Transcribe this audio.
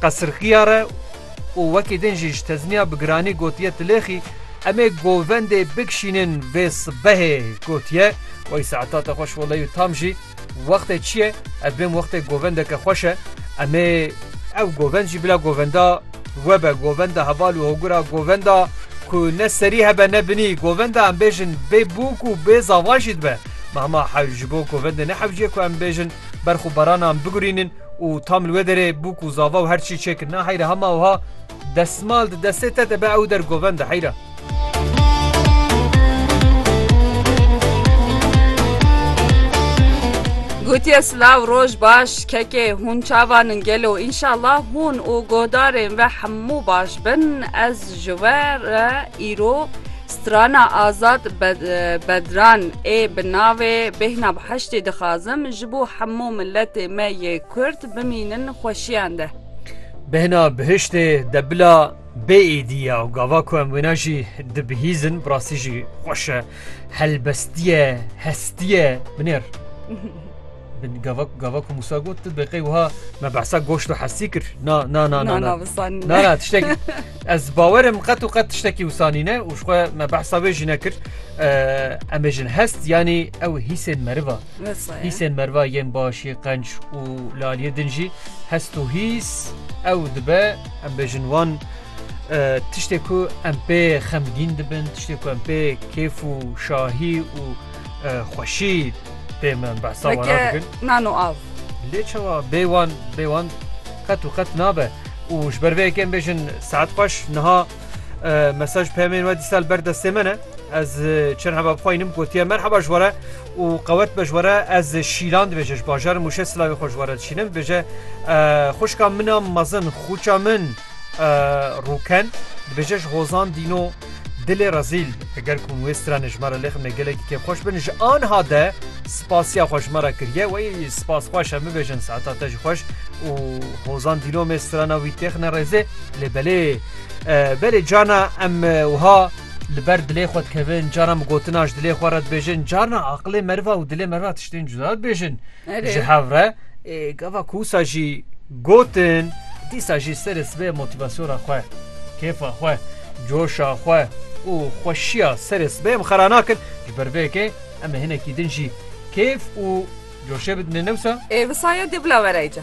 Qesirxiya re û wekî din jî ji tezmiya bi giranî gotiye Tilêxî em ê govendê bikişînin vê sibehê gotiye Wey saeta te xweş welay û tam jî wextê çi ye ev bên wextê govendeke xweş e em ê ew govend jî bila govenda we be govenda heval û hogura govenda ku ne serî hebe ne binî govenda em bêjin bê bûk û bê zava jî dibe me hema hewl ji bo govendê ne hewciye ku em bêjin berx û baranan bigurînin û tam li wê derê bû ku zava û her çî çê kir. Na heyra hema wiha desmal di destê te de be ew der goven de heyra. Gotiye silav roj baş kekê hûn çavan in gelo înşallah hûn û godarên ve hemû baş bin ez ji we re îro Strana Azad Bedran ê bi navê Bêhna bi heştê dixazim ji bo hemû miletê me yê Kurd bimînin xweşiyan de. Bêhna bihiştê de bila bê êdî ya û gava ku em wêne jî dibihîzin bi rastî jî xweş e. Helbestîye, hestîye binêr. Gava gava ku Musa got tu beqey wiha me behsa goşt û hesî kir. Na na na na na wisan. Na na tiştekî ez bawerim qet û qet tiştekî wisanî ne û xwe me behsa wê jî nekir. Em ê jin hest yanî ew hîsên meriva. Hîsên meriva yên başî qenc û laliyê din jî hest û hîs ew dibe em bêjin wan tiştê ku em pê xemgîn dibin, tiştê ku em pê kêf û şahî û Xweşî tê min behsa wan dikin. Nano av. Lê çawa bê wan bê wan qet û qet nabe û ji ber vê yekê em bêjin saet xweş niha mesaj peyamên we dîsal ber destê min e ez çend heba bixwe înim gotiye merheba ji were û qewet be ji were ez şîlan dibêje ji bajarim û şe silavê xwe ji were dişînim dibêje xuşka min a mezin xûça min Rûken dibêje ji hozan dîno dilê rezîl eger ku wê stranê ji me re lêximne gelekî kê xweş bin ji anha de spasiya xwe ji me re kiriye wey spas xweş em bibêjin saeta te ji xweş û hozan dîno me strana wî têxine rêzê lê belê belê cana em wiha li ber dilê xwe dikevin cana bi gotina ji dilê xwe re dibêjin carna aqilê meriva û dilê meriva tiştên cuda dibêjin. Ji hev re gava ku wisa jî gotin dîsa jî serê sibê motivasyona xwe, kêfa xwe, coşa xwe û xweşiya serê sibê em xera nakin. Ji ber vê yekê em ê hinekî din jî kêf û coşê bidinê ne wisa? Ê wisa ye dê bila were îca.